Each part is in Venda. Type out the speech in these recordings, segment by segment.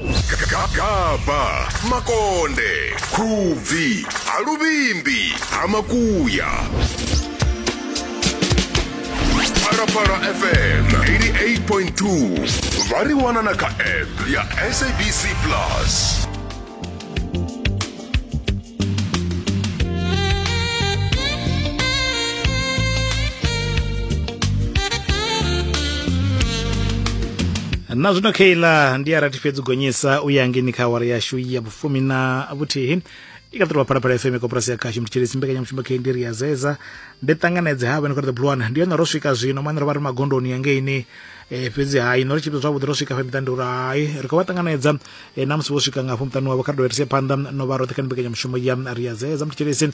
gagaba makonde khubvi ha luvhimbi ha makuya phalaphala fm 88.2 vha ri wana na kha app ya sabc plus na zwino keila ndi a rathi fhedzi gonyisa u ya ngeni kha awara yashu ya vhufumi na vhuthihi i ka ṱolwa phalaphala fm koporasi ya khashu mutshilisi mbekanyamushumo khe ndi ri ya zeza ndi ṱanganedze ha vhene kha the blue one ndi yone ro swika zwino mane ro vha ri magondoni ya ngeini eh, fhedzi hai no ri tshipita zwavhuḓi ro swika fha miṱa ndi uri hai ri khou vha ṱanganedza e na musi vho swika ngafho muṱani wavho kha ri dovherise phanḓa no vha roṱhe kha ni mbekanyamushumo ya ri ya dzedza muthetshelesi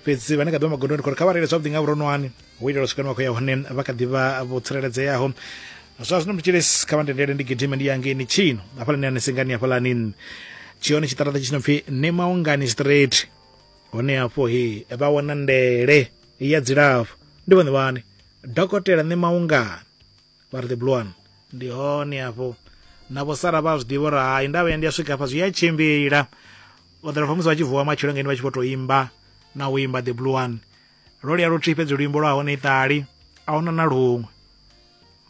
fhedzi vhane kha ḓivha magondoni khori kha vha reile zwavhuḓi nga vhuronwane hu itela u swika ni wa khou ya hone vha kha ḓivha vho tsireledzeaho zwa zwino muthetshelesi kha vha ndendele ndi gidime ndi yangeni tshino hafhalani ani singani hafhalani tshihone tshiṱaraṱa tshi no pfi ne maungani straight hone hafho he vha wana ndele ya dzilafho ndi vhone vhane dokotela ne maungani vha ri the blue one ndi hone hafho na vho sara vha zwi ḓivha uri hai ndavha ya ndi a swika hafha zwi a tshimbila vhaḓela famusi vha tshi vuwa matshelo ngeni vha tshi vho tou imba na u imba the blue one ro lia luthihi fhedzi luimbo lwa hone iṱali a huna na luṅwe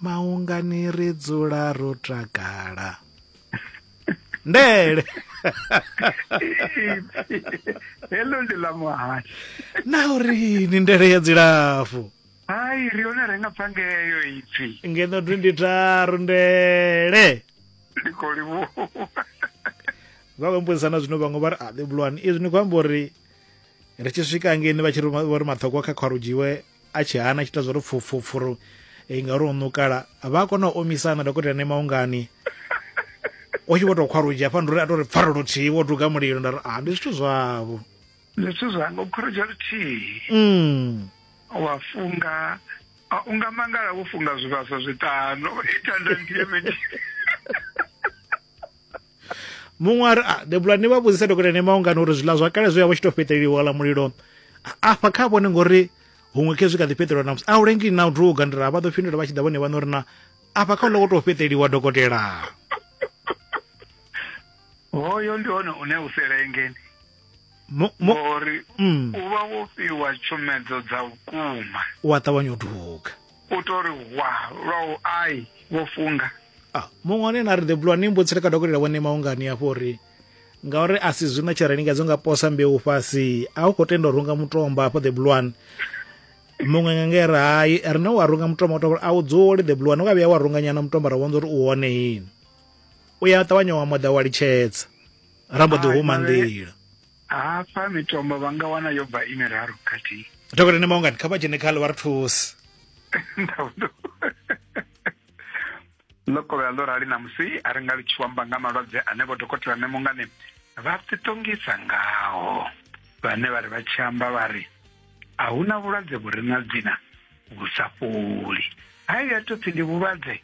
maungani ri dzula ro takala ndele heḽo ndi ḽa muhasho na uri ni ndele ya dzilafho hai ri hone renga phangeyo ipfi ngeno 23 ndele ndi khou livhuwa vha khou mbudzisa na zwino vhaṅwe vha ri a ḓivhulwani izwi ni khou amba uri ri tshi swika ngeni vha tshi ri vho ri maṱhogwa kha khwarudzhiwe a tshi hana a tshi ita zwa uri pfupfupfuru eh, ngauri u nukala vha a kona u omisana dokotela ne maungani o tshi vho tou khwarudzhi hafha ndi uri a tou ri pfarelo thihi wo duga mulilo nda ri a ndi zwithu zwavho zwithu zwanga u khorodzha luthihi mm. wa funga ah, u nga mangala wo funga zwivhaswa zwiṱanu itanda nthihi mini muṅwe a ri a debula ni vha vhudzisa dokotela ne maungano uri zwiḽa zwa kale zwi ya vha tshi tou fheṱeliwa la mulilo A- afha kha vhone ngori huṅwe khezwi kha ḓi fheṱeliwa na musi a u lengi na u duga ndi ra vha ḓo fhindula vha tshi ḓa vhone vhana uri na afha kha u loko tou fheṱeliwa dokotela hoyo ndi hone une u selengeni mo, mo, ngori mm, u vha wo fhiwa tshumedzo dza vhukuma u a ṱavhanya u duga u to ri hwa lwa u ai vho funga Ah, muṅwe ane na ri ḓebulwa ni mbutsile ka dokotela vhone maungani afho uri ngauri a si zwino tsha rengedzo nga posa mbeu fhasi a u khou tenda u runga mutomba afho ḓebulwani muṅwe nga nge ri hai rine wa runga mutomba uto a u dzuli ḓebulwani wa vhuya wa runga nyana mutomba ra vhonza uri u hone yini u ya ṱavhanya wa moḓa wa litshedza ra mbo ḓi huma nḓila hafha mitombo vha nga wana yo bva i miraru khathihi dokotela ni maungani kha vha dzhene kha ḽi vha ri thusi lokovhela ḽo rali namusi a ri nga ḽi tshi wamba nga malwadze ane vho dokotela ne mungani vha ṱiṱongisa ngaho vhane vha ri vha tshi amba vha ri a hu na vhulwadze vhu re na dzina vhu sa fholi ha i ya tou pfhi ndi vhulwadze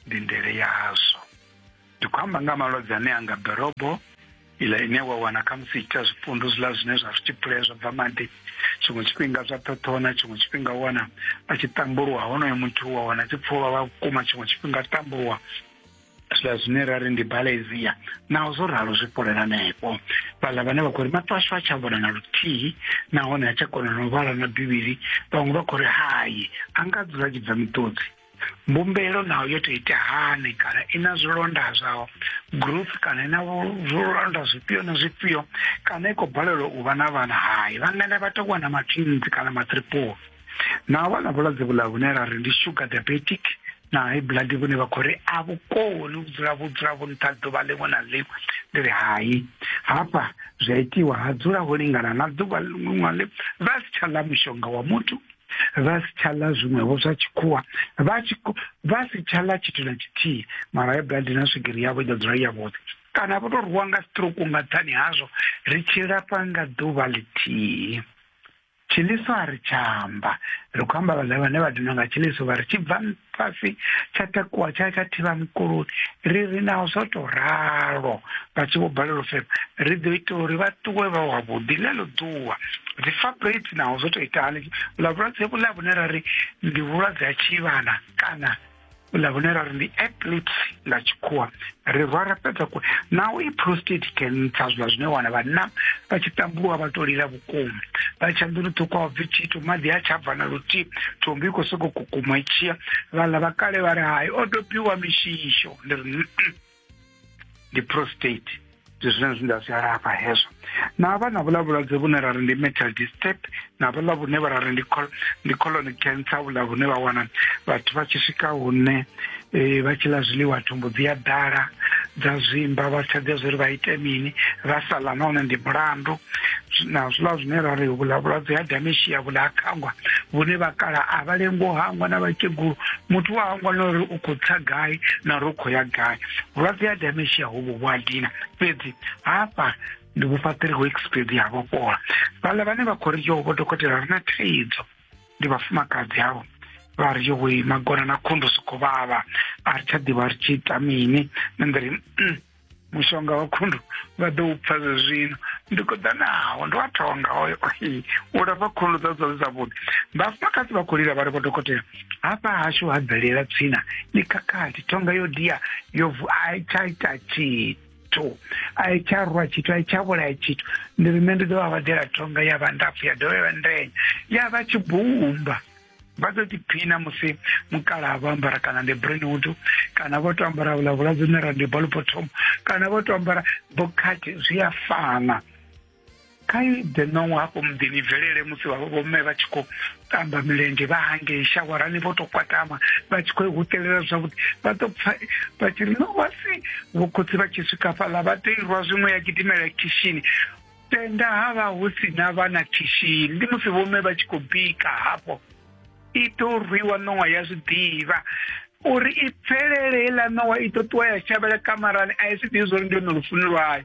ndi ndele yazwo ndi khou amba nga malwadze ane anga ḓorobo ila ine wa wana khamusi ita zwipundu zwiḽa zwine zwa zwi tshipule zwa bva maḓi tshiṅwe tshifhinga zwa ṱhoṱhona tshiṅwe tshifhinga wana a tshi tambuluwa honoyo muthu wa wana tshi pfulwa vha vhukuma tshiṅwe tshifhinga tambuluwa zwiḽa zwine ra ri ndi balezia naho zwo ralo zwi fholela nepo vhaḽa vhane vha khou ri maṱo ashu a tsha vhona na luthihi nahone a tsha kona na u vhala na bivhili vhaṅwe vha khou ri hai a nga dzula tshi bva miṱodzi mbumbelo naho yo to ita hani kana i na zwilonda zwa group kana i na zwilonda zwifhio na zwifhio kana i khou balelwa u vha na vhana hai vhangana vha tou wana matwinzi kana matriple naho vha na vhulwadze vhula vhune ra ri ndi sugar diabetic na high blood vhune vha khou ri a vhukoni u dzula vhu dzula vhu nṱha ḓuvha ḽiṅwe na ḽiṅwe ndi ri hai hafha zwi a itiwa ha dzula ho lingana na ḓuvha ḽiṅwe na ḽiṅwe vha si tsha ḽa mushonga wa muthu vha si tsha ḽa zwiṅwevho zwa tshikhuwa vha tshi ko- vha si tsha ḽa tshithu na tshithihi mara ya blood na swigiri yavho i ḓo dzula i yavhuḓi kana vho tou rwiwa nga stroke nga nṱhani hazwo ri tshi lafha nga ḓuvha ḽithihi tshiliso a ri tsha amba ri khou amba vhaḽa vhane vha dinwa nga tshiliso vha ri tshi bva fhasi tsha takuwa tsha tsha thivha mukuloni ri ri naho zwo to ralo vha tshi vho balelwa u fema ri ḓo ita uri vha ṱuwe vha wavhuḓi ḽeḽo ḓuwa dzi fabrate naho zwo to ita hani ḽa vhulwadze vhuḽa vhune ra ri ndi vhulwadze ha tshivhana kana ḽa vhune ra ri ndi epilepsy ḽa tshikhuwa ri rwa ra fhedza ku naho i prostate cancer zwiḽa zwine wana vhanna vha tshi ṱambuwa vha to lila kukuma vha tsha nḓuni ṱhukhu a bvi tshithu maḓi a tsha bva na luthihi thombi i khou soko kukuma i tshiya vhaḽa vha kale vha ri hai o dobiwa mishisho ndi ri ndi prostate ndi zwine zwine nda zwi alafha hezwo na vha na vhuḽa vhulwadze vhune ra ri ndi metal disturb na vhuḽa vhune vha ra ri ndi colon cancer vhuḽa vhune vha wana vhathu vha tshi swika hune e, vha tshi ḽa zwiḽiwa thumbu dzi a ḓala dza zwimba vha tsha ḓivha zwori vha ite mini vha sa ḽa nahone ndi mulandu na zwiḽa zwine ra ri vhula vhulwadze ha dementia vhula ha khangwa vhune vha kala a vha lengo hangwa na vhakegulu muthu wa hangwa na uri u khou tsa gai na uri u khou ya gai vhulwadze ha dementia hovhu vhu a dina fhedzi hafha ndi vhufhaṱiri ho expedi ha vhofhola vhaḽa vhane vha khou ri yo vho dokotela ri na thaidzo ndi vhafumakadzi avo vha ri yo wei magona na khundu soko vhavha a ri tsha ḓivha ri tshi ita mini na ndiri mm, mushonga wa khundu vha ḓo u pfa zwe zwino ndi khou ḓa naho ndi wa thonga oyo u lafha khundu dza dza zwavhuḓi vhafumakadzi vha khou lila vha ri vho dokotela hafha hashu ha bvelela tswina ni khakhathi thonga yo dia yo vu a i tsha ita tshithu tho a i tsha rwa tshithu a i tsha vhulaya tshithu ndi ri nṋe ndi ḓo vha vhadela thonga ya vha ndapfu ya dovha ya vha ndenya ya vha tshibumba vha ḓo ḓiphina musi mukala vho ambara kana ndi breenwood kana vho to ambara vhula vhuladzine ra ndi bolbottom kana vho to ambara bokhathi zwi a fana kai the nong hafho muḓini bvelele musi vhomme vha tshi khou tamba milenzhe vha hangei shawarani vho to kwatama vha tshi khou i hutelela zwavhuḓi vha ḓo pfa vha tshi ri no wasi vhokhotsi vha tshi swika fhaḽa vha ḓo irwa zwiṅwe ya gidimela khishini tenda ha vha hu si na vha na khishini ndi musi vhomme vha tshi khou bika hafho i ḓo rwiwa ṋowa ya zwi ḓivha uri i pfelele heiḽa ṋowa i ḓo ṱuwa ya shavhela kamarani a i si ḓivhi zwo ri ndi lone lufuni lwayo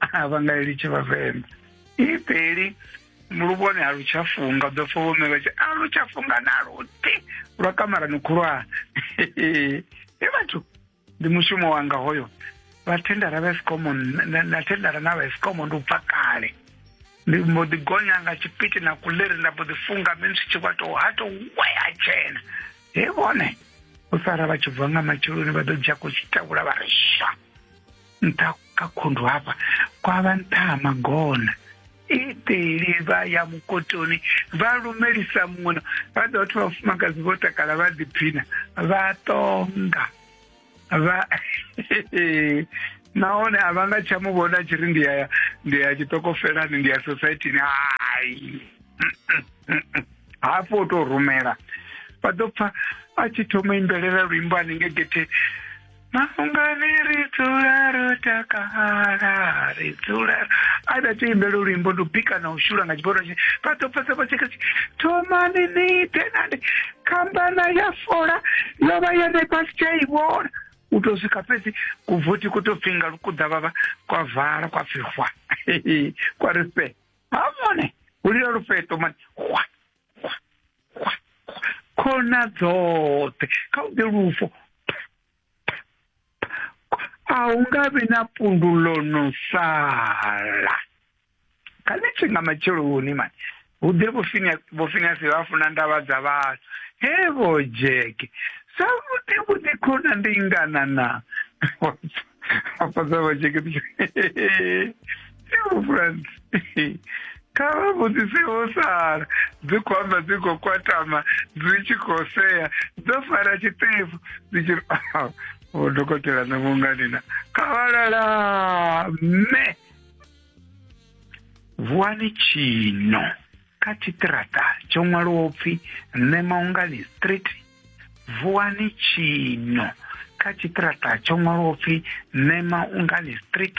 a vha nga i litshe vhavenḓa i peli luvhone a lu tsha funga ḓo pfa vhome vha tshi a lu tsha funga na luti lwa kamarani khulwane e vhathu ndi mushumo wanga hoyo vha thendara vha esikomo na thendara na vha esikomo ndi u bva kale ndi mbo ḓi gonya nga tshipiti na kuleri nda mbo ḓi funga mini zwi tshi kwato ha to wea tshena he vhone u sara vha tshi bva nga matsheloni vha ḓo dzhia kutshitavhula vha ri sha nṱha kha khundu hafha kwa vha nṱha ha magona iteli vha ya mukotoni vha lumelisa muṅwe vha ḓo vhathu vhafumakadzi vho takala vha ḓiphina vha tonga vha nahone a vha nga tsha mu vhona tshi ri ndi ya ndi ya tshiṱokofelani ndi ya societini hai hafho u tou rumela vha ḓo pfa a tshi thoma imbelela luimbo hanenge getheni Mafhungani ri dzula ro takala ri dzula a da tshi imbela luimbo ndi u bika na u shula nga tshiboro tshi vha ḓo pfesa vha tshikha thomani ni ite nandi khambana ya fola yo vha ya ṋe fhasi tsha i vhona u tou swika fhedzi kuvothi ku tou pfinga lukuḓa vhavha kwa vala kwa pfihwa kwa ri fhe ha mone hu lila lufheṱo mani hwa khona dzoṱhe kha u ḓe lufu a hu nga vhi na pundu ḽo no sala kha ni tshi nga matsheloni mani hu ḓe vhofinasi vha funa ndavha dza vhathu he vho dzheke sa vhuḓi vhuḓi khona ndi ngana na afha dza vha dzheke Yo friends. Kava vhudzisewo sara dzi khou amba dzi khou kwatama dzi tshi khou sea dzo fara tshiṱefu dzi tshi ri o dokotela na munganina kavalala mme vuwani tshino kha tshiṱirata tsho ṅwaliwa upfi mme maungani street vuwani tshino kha tshiṱirata tsho ṅwaliwa upfi mme maungani street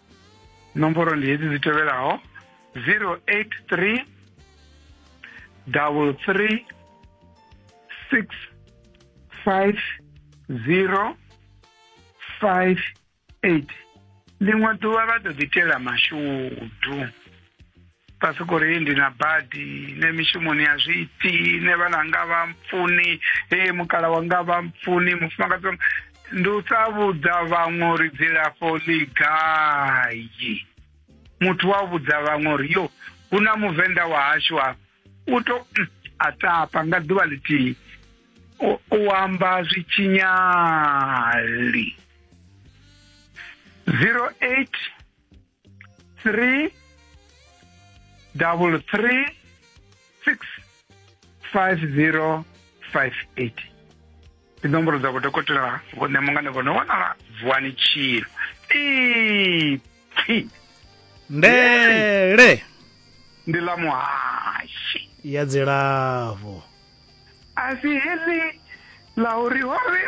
nomboro ndi hedzi dzi tevhelaho 083 double three six five zero five eight ḽiṅwe ḓuvha vha ḓo ḓitela mashudu fhasi kori ndi na badi ne mishumoni ya zwiiti ne vhana nga vha mpfuni e mukala wanga vha mpfuni mufumakadzi wanga ndi u sa vhudza vhaṅwe uri dzilafho ḽi gai muthu wa vhudza vhaṅwe uri yo hu na muvenḓa wa hashu a u to mm, a tapa nga ḓuvha ḽithihi u- u amba zwi tshinyali 08 three double three six five zero five eight ndi nomboro dza vhodokotela vhone mungane vho no wanala vuwani tshilo ipfi ndele ndi ḽa muhashi ya dzilafho Así es, la horrible.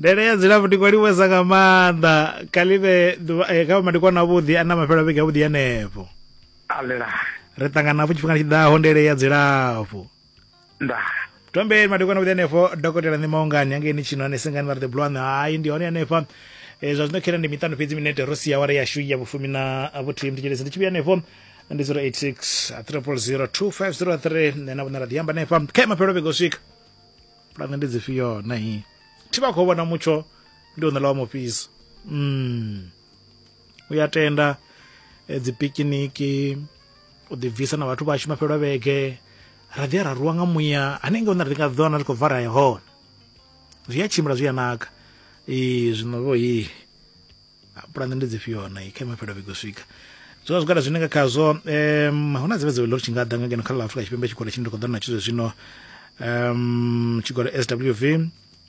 ndele ya dzilafho ndi kwaliwesa nga maanḓa kalive kha madikwana avhuḓi a na mafhelo vhege avhuḓi anepo alela ri ṱangana hafhu tshifhinga tshi ḓaho ndele ya dzilafho ndaa tombeni madekwana vhuḓi hanefho dokotela ni maungani hangeni tshino anesengani vha ri the blue one hai ndi hone hanefha e, zwa zwino khera ndi miṱanu fhedzi minete ro sia wara yashu ya vhufumi na vhuthihi mthetshelezi ndi tshi vhuya hanefho ndi 086 3002503 nṋe na vhona ra ḓi amba hanefha khe mafhelo vhego swika pulane ndi dzifhio nahi thi vha khou vhona mutsho ndi u ṋela wa mufhiso mm. u ya tenda eh, dzi pikiniki u ḓi bvisa na vhathu vhashu mafhelwa vhege ra ḓi ya ra ruwa nga muya hanenge hone ri nga ḓiwana ri khou bva ra ya hone zwi a tshimbila zwi a naka ee zwino vho hi pulane ndi dzifhio na kha mafhelwa vhege u swika zwi vha zwigwada zwine nga khazwo um hu na dzivhe dzivhe ḽo tshi nga ḓa nga ngeno kha ḽa afrika tshipembe tshigwada tshine ndi khou ḓa na tshizwe zwino um tshigwada swv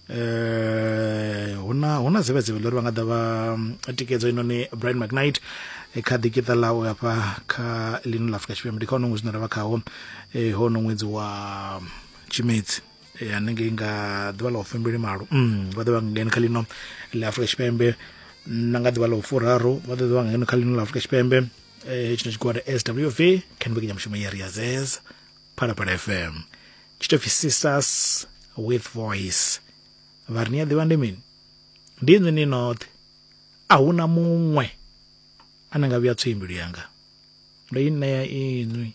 eh huna huna zivhe zivhe lori vha nga ḓa vha mm, tikedzo inoni Brian McKnight eh, kha ḓikiṱa ḽawe hafha kha ḽino ḽa Afrika Tshipembe ndi kha hono ṅwedzi une ra vha khawo eh hono ṅwedzi wa mm, Tshimedzi eh, hanengei nga ḓuvha ḽa u fembeli malo mm, vha ḓo vha ngeno kha ḽino ḽa Afrika Tshipembe na nga ḓuvha ḽa u furaru vha ḓo vha ngeno kha ḽino ḽa Afrika Tshipembe eh tshino tshigwada SWV khenbekenya mushumo ya Riazez phalaphala fm tshi tou pfi sisters with voice vha ri ni a ḓivha ndi mini ndi inwi ni noṱhe a hu na muṅwe a ni nga vhuya tsoi mbilu yanga ndo i ṋea inwi